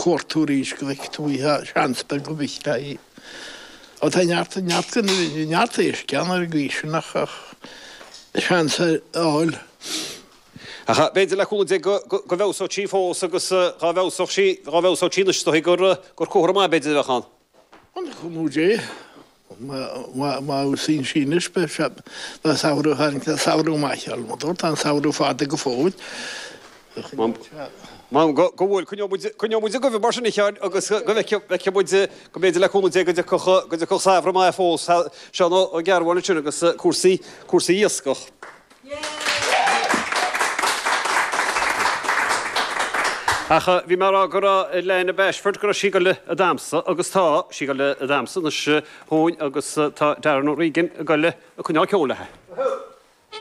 cuairteoirí Sceilg Dubhaithe, seans beag go bhfeicteá í. Ó tá neart an neart gan a bheith, bhí neart éisc ann ar an gcaoi sin ach ach seans a fháil. Ach b'fhéidir le cúnamh Dé go bhfeabhsóidh sí fós agus dhá bhfeabhsódh sí, dhá bhfeabhsódh sí anois is dóigh gur comhartha maith b'fhéidir a bheadh ann. Le cúnamh Dé, má fheabhsaíonn sí anois, beidh sé, beidh samhradh thar an samhradh maith mar a dúirt, tá an samhradh fada go fóill. M'anam go go bhfuil, coinneoidh muid, coinneoidh muid ag guí mar sin a Sheáin agus go bhfeicfidh, bhfeicfidh muid, go mb'fhéidir le cúnamh Dé go dtiocfadh, go dtiocfadh samhradh maith fós, Seán Ó Cearbhaill ansin agus cúrsaí, cúrsaí iascach. Ach bhí mé ag rá go raibh Lena Bashford, go raibh sí ag goil a damhsa, agus tá sí ag goil a damhsa anois dhúinn, agus tá Darren O'Regan ag goil a coinneáil ceoil léithe.